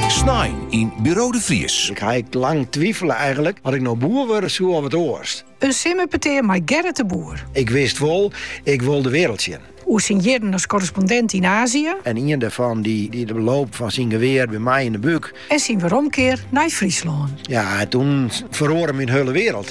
Snein yn Buro de Vries. Ik ha ik lang twifele eigentlik oft ik no boer wurde soe of wat oars. In simmerpetear mei Gerrit de Boer. Ik wist wol, ik wol de weareld sjen. Oer syn jierren as korrespondint yn Azië. En ien dêrfan dy't de loop fan syn gewear by my yn de búk. En syn weromkear nei Fryslân. Ja, toen feroare myn hiele weareld.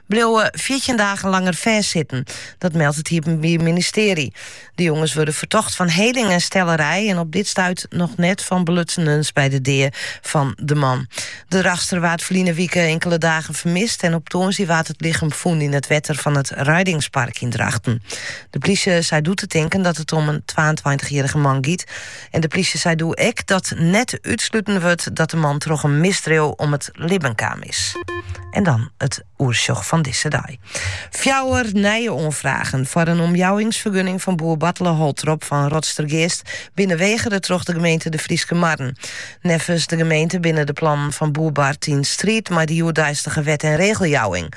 bliuwe fjirtjin dagen langer fêstsitten. Dat meldt it Iepenbier Ministearje. De jonges wurde fertocht fan heling en stellerij en op dit stuit noch net fan belutsenens by de dea fan de man. De Drachtster waard ferline wike inkele dagen fermist en op tongersdei waard it lichem fûn yn it wetter fan it Reidingspark yn Drachten. De plysje sei doe te tinken dat it om in twaentweintichjierrige man giet. En de plysje sei doe ek dat net útsluten wurdt dat de man troch in misdriuw om it libben kaam is. En dan it oersjoch fan dizze dei. Fjouwer nije oanfragen foar in omjouwingsfergunning fan boer Bartele Holtrop fan Rotstergeast binne wegere troch de gemeente De Fryske Marren. Neffens de gemeente binne de plannen fan boer Bart yn striid mei de hjoeddeistige wet- en regeljouwing.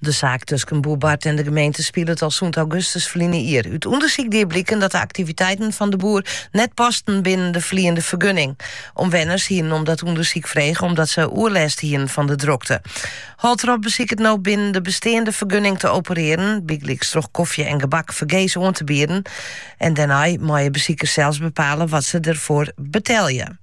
De saak tusken boer Bart en de gemeente spilet al sûnt augustus ferline jier. Ut ûndersyk die bliken dat de aktiviteiten fan de boer net pasten binnen de ferliende fergunning. Omwenners hienen om dat ûndersyk frege omdat se oerlêst hienen fan de drokte. Holtrop besiket no binnen de besteande fergunning te operearjen, bygelyks troch kofje en gebak fergees oan te bieden. En dêrnei meie besikers sels bepale wat se derfoar betelje.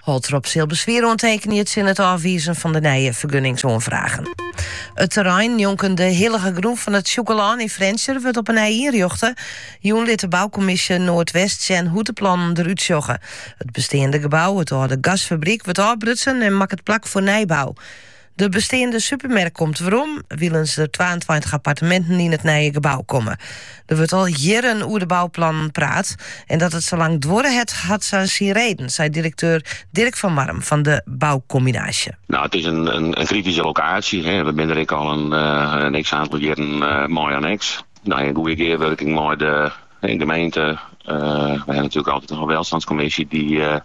Holtrop sil beswier oantekenje tsjin it ôfwizen fan de nije fergunningsoanfragen. It terrein njonken de hillige grûn fan it Sjûkelân yn Frjentsjer wurdt op 'e nij ynrjochte. Jûn lit de boukommisje Noardwest sjen hoe't de plannen der út sjogge. It besteande gebou, it âlde gasfabryk, wurdt ôfbrutsen en makket plak foar nijbou. De besteande supermerk komt werom, wylst der twaentweintich apparteminten yn it nije gebou komme. Der wurdt al jierren oer de bouplannen praat en dat it sa lang duorre hat, hat sa syn reden, seit direkteur Dirk van Marrum fan de Boukombinaasje. No, it is in krityske lokaasje. We binne der ek al in x aantal jierren mei oan, ek yn in goede gearwurking mei de gemeente. We ha natoerlik altyd in welstandskommisje dy't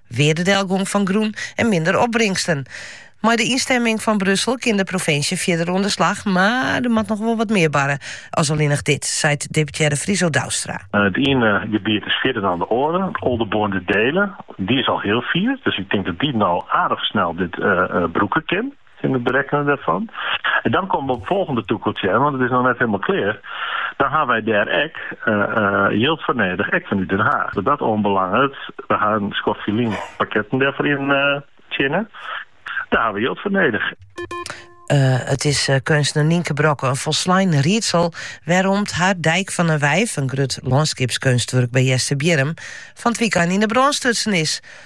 Weardedelgong fan grûn en minder opbringsten. Mei de ynstemming fan Brussel kin de provinsje fierder oan de slach, mar der moat noch wol wat mear barre as allinnich dit, seit deputearre Friso Douwstra. It iene gebiet is fierder dan it oare, Aldeboarn-De Deelen. Dy is al hiel fier, dus ik tink dat dy no aardich snel dit brûke kin. in it berekkenen dêrfan. En dan komme we op it folgjende tûkeltsje, want it is noch net helemaal klear. Dan ha wy dêr ek jild foar nedich, ek fanút Den Haag. Wat dat oanbelanget, we ha in skoft ferlyn pakketten dêrfoar yntsjinne. Dêr ha we jild foar nedich. En it is keunstner Nienke Brokke in folslein riedsel wêrom't har Dijk van een Wijf, in grut lânskipskeunstwurk by Seisbierrum, fan it wykein yn 'e brân stutsen is.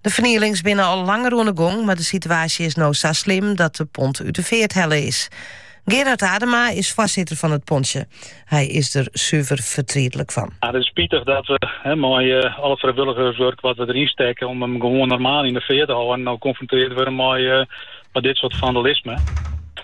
De fernielings binne al langer oan de gong, mar de situaasje is no sa slim dat de pont út de feart helle is. Gerard Adema is foarsitter fan it pontsje. Hy is der suver fertrietlik fan. Ah, it is spitich dat we, hè, mei uh, eh, al it frijwilligerswurk wat we deryn stekke om him gewoan normaal yn 'e feart te hâlden, no konfrontearre wurde mei, uh, eh, mei dit soart fandalisme.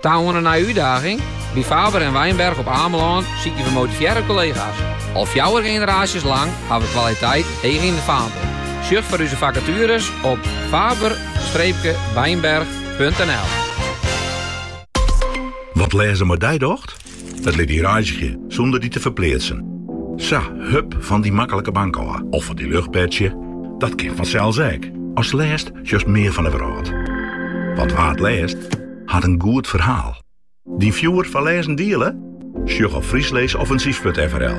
Ta oan in nije útdaging? By Faber en Wijnberg op It Amelân sykje wy motivearre kollega's. Al fjouwer generaasjes lang ha we kwaliteit heech yn de faanpel. Sjoch foar ús fakatueres op faber streekje wijnberg.nl. Wat lêzen mei dy docht? It lit dy reizgje sûnder dy te ferpleatsen. Sa, hup fan dy maklike bank ôf of fan dy luchtbedsje, dat kin fansels ek. As lêst sjochst mear fan 'e wrâld. Want wa't lêst, hat in goed ferhaal. Dyn fjoer foar lêzen diele? Sjoch op frysklêsoffinsyf.frl.